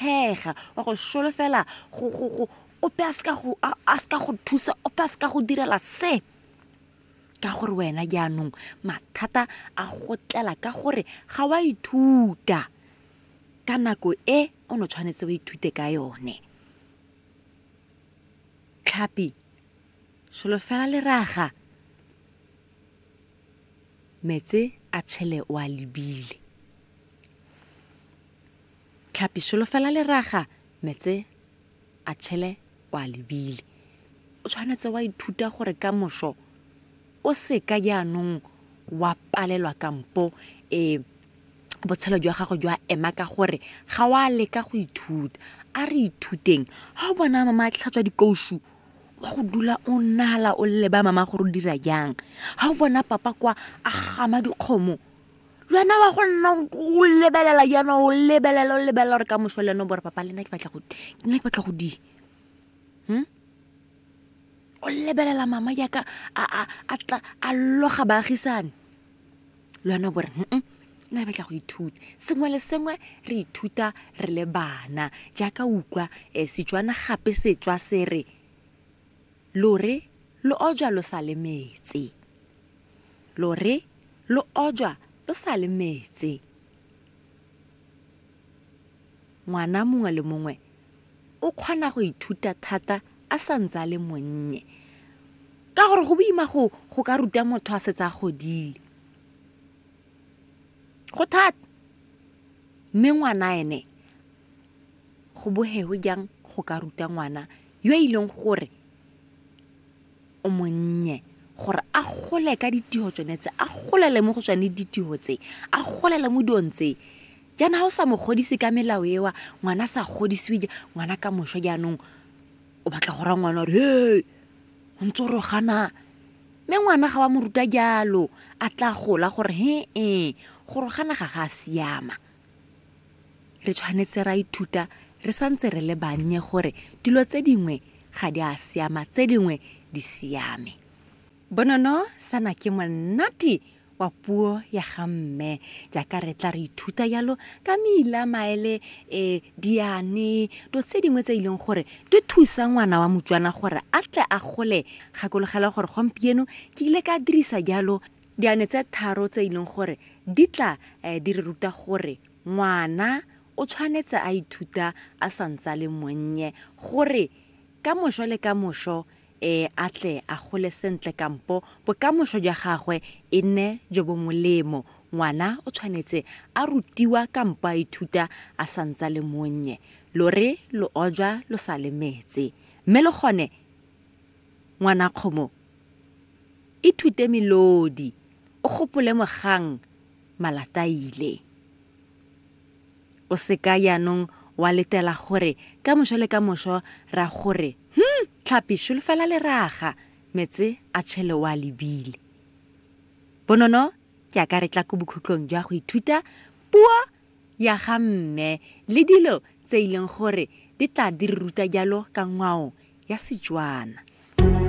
thega wa go solofela ope a seka go thusa ope a seka go direla se ka gore wena jaanong mathata a go tlela ka gore ga wa ithuta ka nako e o ne tshwanetse o ithute ka yone tlhapi solofela leraga metse a tshele o a lebile Tlhapi solofela leraga, metse a tšhele o a lebile. O tshwanetse wa ithuta gore ka moso o seka jaanong wa palelwa kampo um botshelo jwa gago jwa ema ka gore ga wa leka go ithuta. A re ithuteng, ga o bona mama a tlhatswa dikousu wa go dula o nnala o leba mama gore o dira jang, ga o bona papa kwa a gama dikgomo lwena wa go nna o lebelela jaana o lebelela o lebelela gore ka moso le ene o bore papa lena ke batla go nna ke batla go di hmm? o lebelela mama jaaka a loga baagisane le wena o bore mm nna ke batla go ithuta sengwe le sengwe re ithuta re le bana jaaka utlwa um setswana gape setswa se re Lo re lo ojwa lo sa le metse. Lo re lo ojwa lo sa le metse. Ngwana mongwe le mongwe o kgona go ithuta thata a sa ntse a le monnye ka gore go boima go ka ruta motho a setse a godile. Go thata, mme ngwana ene go bohewe jang go ka ruta ngwana yo e leng gore o monnye, gore a gole ka ditiho tsone tse, a golele mo go tsone ditiho tse, a golele mo dilong tse. Jaanong ga o sa mo godise ka melao eo, ngwana a sa godisiwe, ngwana ka moso jaanong o batla go raya ngwana o re, hee, o ntse o re o ganaa. Mme ngwana ga wa mo ruta jalo, a tla gola gore, he-e, gore o gana ga go a siama. Re tshwanetse ra ithuta re sa ntse re le bannye gore dilo tse dingwe ga di a siama, tse dingwe di siame. Bonono sana ke monate wa puo ya ga mme jaaka re tla re ithuta jalo ka meila, maele, diane, dilo tse dingwe tse e leng gore di thusa ngwana wa motswana gore a tle a gole. Gakologelwa gore gompieno ke ile ka dirisa jalo Diane tse tharo tse e leng gore di tla di re ruta gore ngwana o tshwanetse a ithuta a sa ntse a le monnye gore ka mošo le ka mošo um a tle a gole sentle kampo bokamošo jwa gagwe e nne jo bo molemo. Ngwana o tshwanetse a rutiwa kampo a ithuta a sa ntse a le monnye. Lore lo ojwa lo sa le metse, mme le gone ngwanakgomo Ithute melodi, o gopole mogang Malataile. O se ka jaanong wa letela gore ka mošo le ka mošo ra go re, Hum! Tlhapi, šolofela leraga, metse a tšhele o a lebile. Bonono ke a ka re tla ko bokhutlong jwa go ithuta puo ya ga mme le dilo tse e leng gore di tla di re ruta jalo ka ngwao ya Setswana.